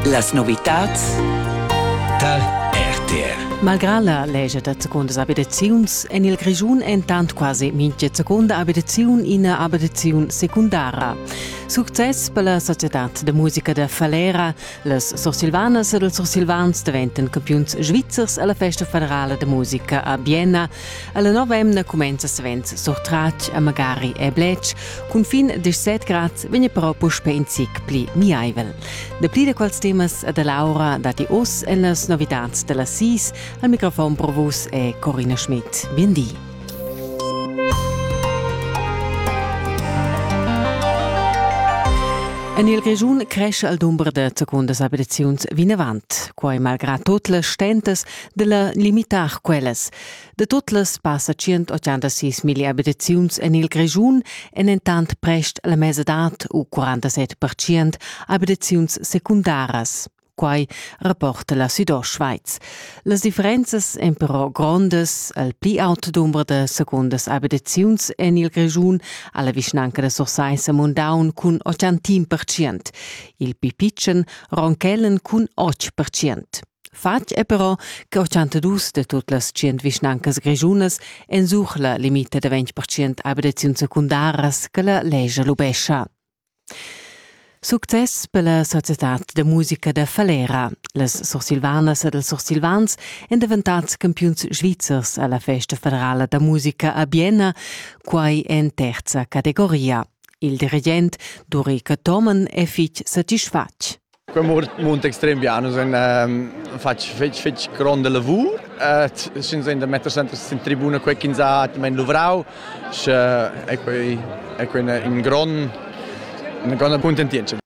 Las novitads tar RTR. Malgrà la legia da secondas abitaziuns en il Grischun entant quasi mintga secunda abitaziun ina abitaziun secundara. Success per la societad da musica da Falera. Las sursilvanas ed ils sursilvans daventan campiuns svizzers alla festa federala da musica a Bienna. Alla novemna cumenza svens surtratg a magari e Blec Cunfin 17 grad vegn però puspè in zic pli miaivel. Dapli da quels temas da Laura datti oz en las novitads da las sis. Al microfon pro vus è Corina Schmidt. Bien di. En il Grischun cresce il dumber da secundas abitaziuns vinavant, quai malgrà tot las stentas da la limitar quellas. De tot las passa 186 mille abitaziuns en il Grischun en entant prest la mesa d'art u 47% abitaziuns secundaras. Quai rapporta la Südostschweiz. Las differenzas èn però grondas al pli aut dumber da secondas abitaziuns en il Grischun alla vischnanca da Sursaissa Mundaun cun 80%, il pli pitschen Ronkellen cun 8%. Fatg è però che ochantadus da tut las tschient vischnancas grischunas ensuch la limita da ventg percent abitaziuns secundaras che la lescha lubescha. Success per la societad da musica da Falera. Las sursilvanas ed els sursilvans èn daventads campiuns svizzers a la festa federala da musica a Bienna, quai en terza categoria. Il dirigent Duri Cathomen è fitg satisfatg. Quei mund extrem bien, nus ein fatg fetg fetg gronda lavur, sin da metter sempre sin tribuna quei ch'ins ha atgnamein luvrau, sche ei quei è quei in grond una grande contentienza.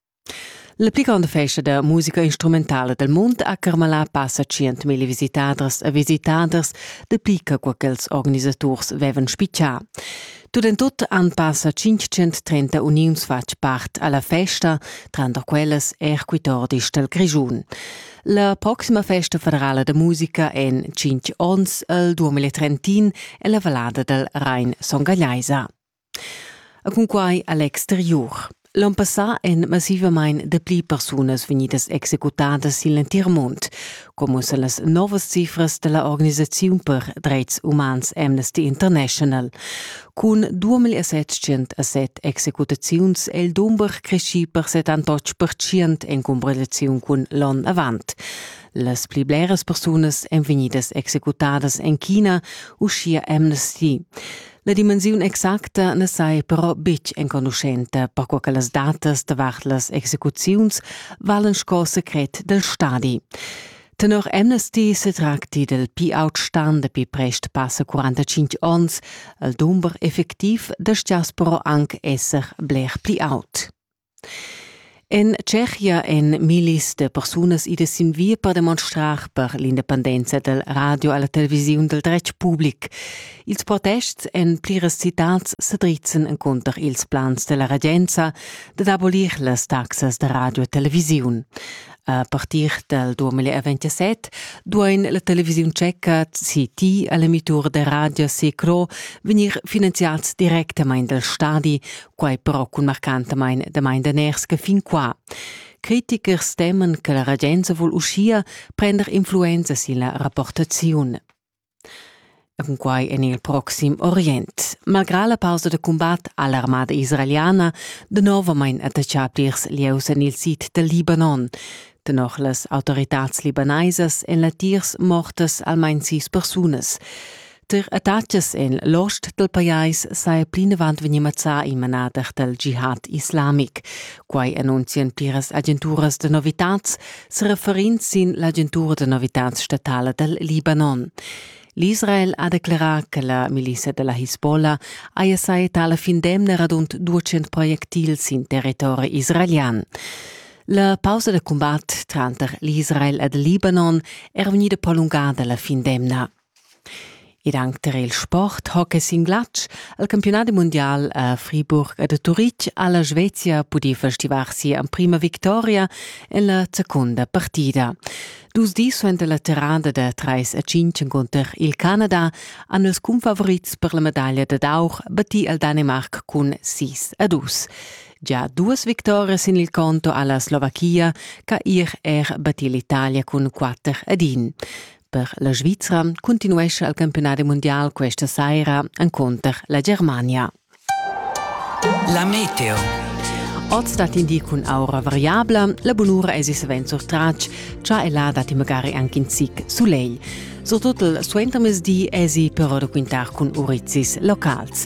La pli gronda festa da musica instrumentala del mund a Carmalà passa 100.000 visitaders e visitaders, de pli che quei ch'ils organisaturs vevan spiccià. Tut en tut han passa 530 uniuns fatg part alla festa, tranter quellas er quitordis dal Grischun. La proxima festa federala da musica en 5 onns al 2030 è la valada dal Rhein Songagliaisa. Cunquai all'exteriur. L'on passà èn massivamain dapli persunas vegnidas executadas sin l'entir mund, come sa las novas cifras da la organisaziun per dretgs umans Amnesty International. Cun 2707 executaziuns è il dumber creschì per 78% en comparaziun cun l'onn avant. Las pli bleras persunas èn vegnidas executadas en China, uschia Amnesty. La dimensiun exacta na sai però betg enconuschenta, perquai che las datas davart las execuziuns valen sco secret dal stadi. Tenor Amnesty se tracti del pi-outstan dapi prest passa 45 ons, al dumber effectiv destias però anc esser bler pli aut. En Tschechia èn millis da persunas idas sin via per demonstrar per l'independenza dal radio e la televisiun dal dretg public. Ils protests en pliras citads sa drizzan encunter ils plans da la regenza dad abolir las taxas da radio e televisiun. A partir dal 2027 duain la televisiun tscheca CT e l'emitur da radio Secro vegnir finanziads directamain dal stadi, quai però cun marcantamain damain daners che fin qua. Critichers teman che la regenza vul uschia prender influenza sin la rapportaziun. Cunquai en il proxim Orient. Malgrà la pausa da cumbat ha l'armada israeliana danovamain attaccà plirs lieus en il sid dal Libanon. Tenor las autoritads libanaisas èn latiers mortas almain sis persunas. Tar attacas en l'ost dal pajais saja plinavant vegnì mazzà il manader dal jihad islamic. Quai annunzian pliras agenturas da novitads, sereferind sin l'agentura da novitads statala dal Libanon. L'Israel ha declerà che la milizia da la Hisbollah haja sai tala fin d'emna radund 200 projectils sin territori israelian. La pausa da combat tranter l'Israel ed il Libanon è vegnida prolungada la fin d'emna. Ed anc tar il sport hockey sin glatsch. Il campiunadi mundial a Friburg ed a Turitg ha la Svezia pudì festivar sia emprima victoria en la secunda partida. Dus dis suenter la tirada da trais a cinc encunter il Canada han ils cunfavorits per la medaglia dad aur battì il Danimarc cun sis a dus. Già duas victorias sin il conto ha la Slovachia, ch'ha er er battì l'Italia cun quatter ad in. per la Svizra cuntinuescha il campiunadi mundial questa saira encunter la Germania. La meteo. Oz dat in di cun aura variabla, la bunura es savens sur tratg, cha e là dat magari anche in zic soleil. Surtut il suentermezdi esi però da quintar cun urizis locals.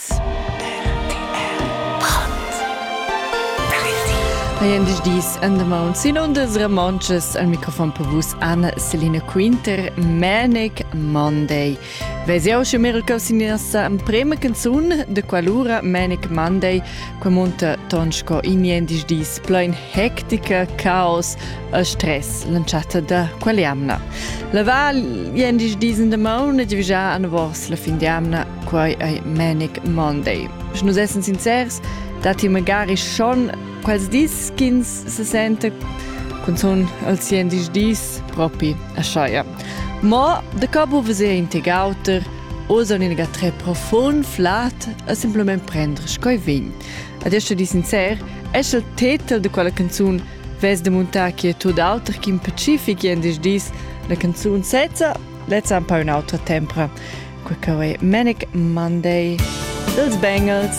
Dis andamont sin undas ramonchas al microfon per vus Anna Selina Quinter Manic Monday. Ves jau sche mir il sin nossa prema canzun de qualura Manic Monday qua monta tonsko in jendis dis plein hectica, caos e stress lanciata da qual jamna. La val jendis dis in de mauna divisa an vors la fin di jamna quai ei Manic Monday. Sche nus essen sincers, datti magari schon quels dis ch'ins se sente cunzun als 10 dis propi a Scheier. Ma de capo veser integauter o son in tre profond flat a simplement prendere coi vin. Adesso di sincer, es il titel de quella canzone ves de montare chi è tot auter che in pacific in dis la canzone sezza Lezza un po un'autra tempra. Quei che Manic Monday dels Bengals.